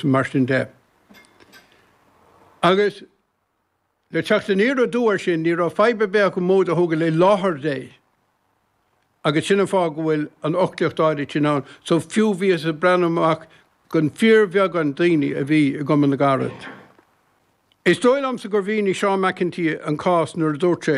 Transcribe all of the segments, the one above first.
Mar sin de, agus le teacht aniar aduaidh air sin, ní raibh fadhb ar bith acu móid a thógáil i láthair Dé, agus sin an fáth go bhfuil an fhoclaíocht áirid sin ann. So, fiú, bhíothas ag breathnú amach don fíorbheagán daoine a bhí i gCumann na gCarad. Is dóigh liomsa gur mhínigh Seán McEntee an cás nuair a dúirt sé,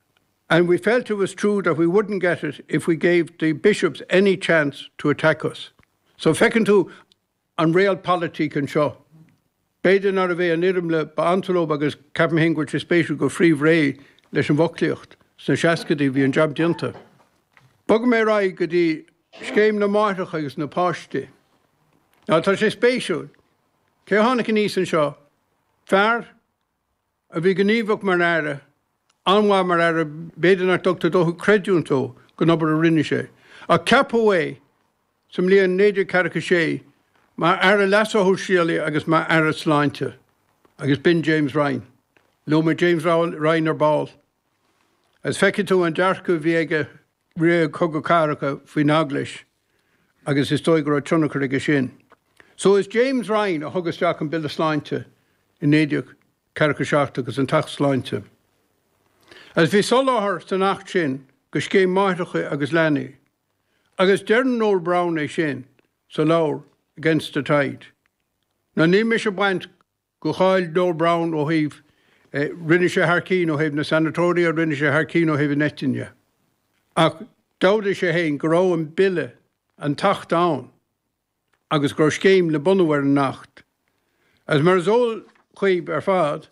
and we felt it was true that we wouldn't get it if we gave the bishops any chance to attack us. So feiceann tú an realpolitik anseo. B'fhéidir nárbh é an fhoirmle ab ansa leob agus ceapaim féin go bhfuil sé spéisiúil gur fritheadh réidh leis an bhfoclaíocht sna seascaidí bhí an jab déanta. Bogfaidh mé ar aghaidh go dtí scéim na máithreacha agus na páistí. Now tá sé spéisiúil. Cé a tháinig aníos anseo? Fear a bhí gníomhach mar aire, an-mhaith mar aire, b'fhéidir nach dtugtar dóthain creidiúint dó don obair a rinne sé, ach ceapadh é sa mbliain 1946 mar aire leasa shóisialaigh agus mar aire sláinte, agus b'in James Ryan. Luaigh mé James Ryan ar ball, agus feicfidh tú an dearcadh a bhí aige rith cogadh cathartha faoin Eaglais agus is dóigh go raibh tionchar aige sin. So is James Ryan a thug isteach an Bille Sláinte i 1947 agus an tAcht Sláinte. Agus bhí soláthar san Acht sin do scéim máithreacha agus leanaí. Agus deireann Noel Browne é sin sa leabhar Against the Tide. Now níl mise ag baint de cháil Noel Browne ó thaobh rinne sé thar cinn ó thaobh na Sanatoria rinne sé thar cinn ó thaobh an eitinne ach d'admhaigh sé féin go raibh an bille, an tAcht ann agus go raibh scéim le bunú ar an Acht. Agus mar is eol dhaoibh ar fad,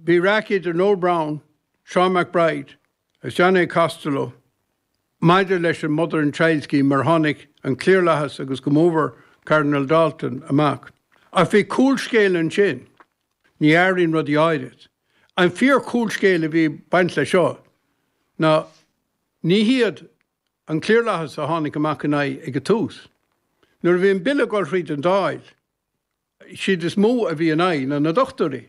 bhí raic idir Noel Browne, Seán MacBride agus John A. Costello maidir leis an Mother and Child Scheme mar tháinig an cliarlathas agus go mór mhór Cardinal D'Alton amach. Ach bhí cúlscéal ansin. Ní athraíonn rudaí áirid. An fíor-chúlscéal a bhí ag baint leis seo ná ní hiad an cliarlathas a tháinig amach ina aghaidh ag an tús. Nuair a bhí an Bille ag dul thríd an Dáil, siad is mó a bhí ina aghaidh ná na dochtúirí.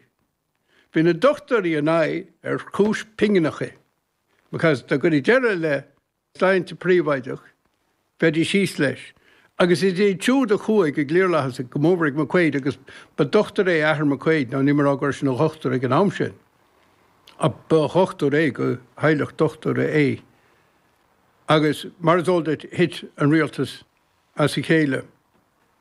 Bhí na dochtúirí ina aghaidh ar chúis pingineacha, because dá gcuirfí deireadh le sláinte príobháideach, bheidís thíos leis. Agus is iad siúd a chuaigh ag an gcliarlathas agus go mór mhór ag McQuaid, agus ba dochtúir é athair McQuaid, nó níl mé ag rá go raibh sé ina dhochtúir ag an am sin, ach ba dhochtúir é, de theaghlach dochtúra é. Agus mar is eol duit, thit an rialtas as a chéile.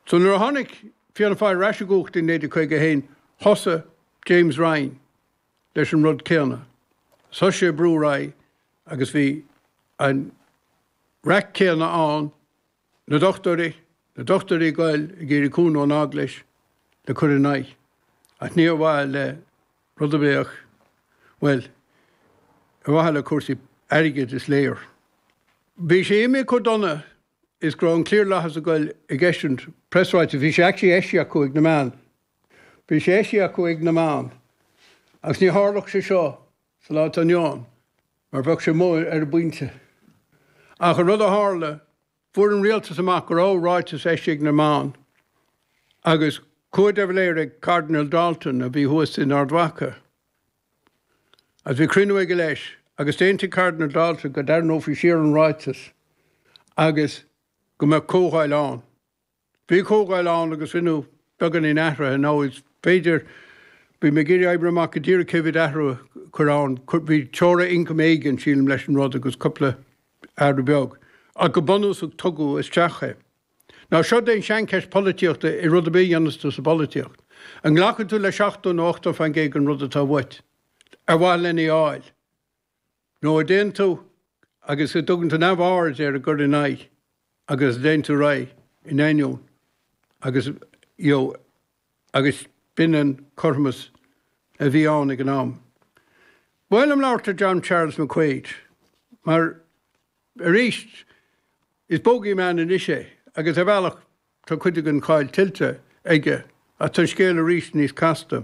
So nuair a tháinig Fianna Fáil ar ais i gcumhacht i 1951 thosaigh James Ryan leis an rud céanna. Is thosaigh sé ag brú ar aghaidh agus bhí an raic céanna ann, na dochtúirí, na dochtúirí ag goil ag iarraidh cúnamh ón Eaglais le cur ina aghaidh. Ach ní ar mhaithe le rud ar bith ach, bhuel, ar mhaithe le cúrsaí airgid is léir. Bhí sé imithe chomh dona is go raibh an cliarlathas ag goil ag eisiúint preasráitis, bhí sé actually eisithe acu ag na meáin. Bhí sé eisithe acu ag na meáin. Agus ní tharlódh sé seo sa lá atá inniu ann, mar bheadh sé amuigh ar an bpointe. Ach an rud a tharla, fuair an rialtas amach go raibh ráiteas eisithe ag na meáin. Agus chuaigh de Valera chuig Cardinal Dalton, a bhí thuas in Ard Mhacha. Is bhí cruinniú aige leis, agus d'aontaigh Cardinal Dalton go dtarraineofaí siar an ráiteas agus go mbeadh comhdháil ann. Bhí comhdháil ann agus rinneadh beagáinín athruithe, nó is féidir, bhí mé ag iarraidh oibriú amach go díreach cé mhéad athrú a cuireadh ann, bhí teora ioncaim éigin, sílim, leis an rud agus cúpla athrú beag, ach go bunúsach tugadh isteach é. Nó seo í an tseancheist polaitíochta i rud ar bith a dhéananns tú sa bpolaitíocht. An nglacann tú le seachtó nó ochtó faoin gcéad den rud atá uait, ar mhaithe lena a fháil? Nó an dtéann tú agus an dtugann tú neamhaird ar an gcur in aghaidh agus an dtéann tú ar aghaidh in ainneoin agus, you know, agus b'in an cothromas a bhí ann ag an am. Ba mhaith liom labhairt ar John Charles McQuaid, mar, arís, Is bogeyman anois é, agus ar bhealach tá cuid den cháil tuillte aige, ach tá an scéal arís níos casta.